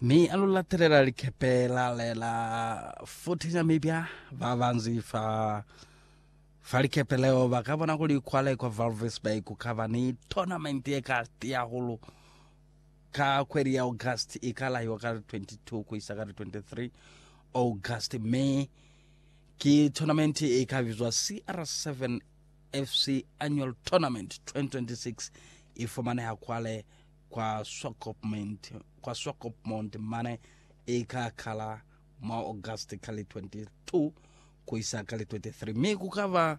mi a lu latelela likepe la lela futhi na mibya ba banzi fa fa likepe leo ba ka bona kuli kwale kwa valvis bay ku ka ba ni tournament ye ka tiya hulu ka kweli ya august i ka lahiwa ka li 22 ku isa ka li 23 august me ki tournament e ka bizwa cr7 FC Annual Tournament 2026 ifumaneha kwale kwa Swakopmund, kwa Swakopmund mane ika kala mwa August ka li 22 kuisa ka li 23 mi kukaba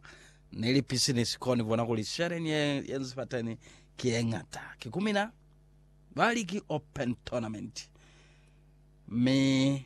ni lipisinisi koni bona kuli sheleni ye yenzi fateni ki yeñata kikumina bali ki open tournament mi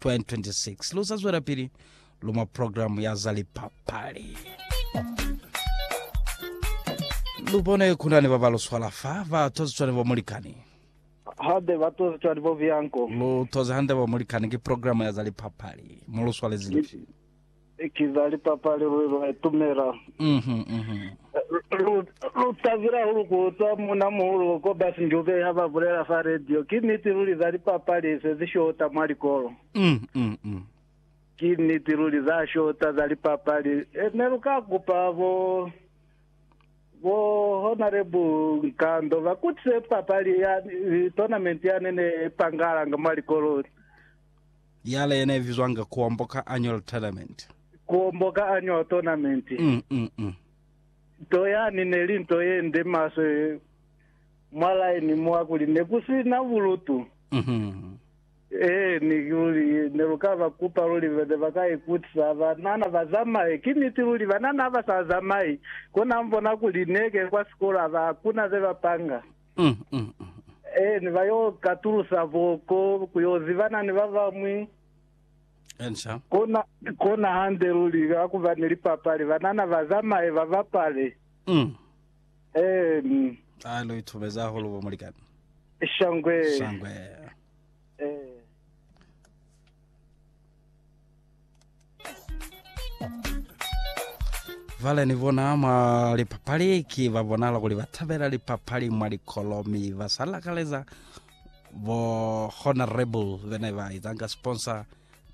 2026 lu sa zwelapili lu mwa programu ya za lipapali. Lu bone ku na ni ba ba lu swala fa, ba toziswa ni bo mulikani. hande ba toziswa ni bo Bianco. Lu toze hande bo mulikani, ki programu ya za lipapali. Mu lu swalezi lifi? Ki za lipapali luli lwa itumela. Lu tabile hahulu ku utwa munamuhulu Cobus Njube ha ba bulela fa radio. Ki niti luli za lipapali se zi shota mwa likolo. Ki niti luli za shota za lipapali. Ne lu ka kupa bo Honorable Nkando ba kutise papali ya tournament yane ne ipangahalanga mwa likolo. Yale yena ibizwanga Kuombo ka Annual Tournament. Kuombo ka Annual Tournament. Mm, mm, mm. Nto yani neli nto yende maswe mwa line mwa kuli nekusina bulutu. Mhm. Ee, ni kuli neluka ba kupa luli ne ba ka ikutisa banana ba zamaye. Ki niti luli banana ha ba sa zamayi, kona mbona kuli neke kwa sikolo ha kuna ze ba panga. Mm, mm, mm. Ee, ni ba yo katulusa boko ku yo zibana ni ba bañwi. Enca. Kona, kona hande luli, ka ku ba ni lipapali, banana ba zamaye ba bapale. Mm. Ee, mm. A lu itubeza hahulu bo mulikani. Shangwe. Shangwe. Ee. Vale ni bona mwa lipapali ki ba bonala kuli ba tabela lipapali mwa likolo mi ba sa lakaleza bo honorable bene ba izanga sponsor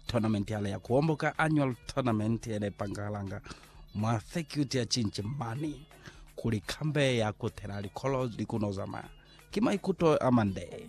tournament yale ya kuomboka annual tournament ene pangalanga mwa circuit ya chinchi mani kuli kambe ya kutela likolo likuno zamaya ki maikuto a mande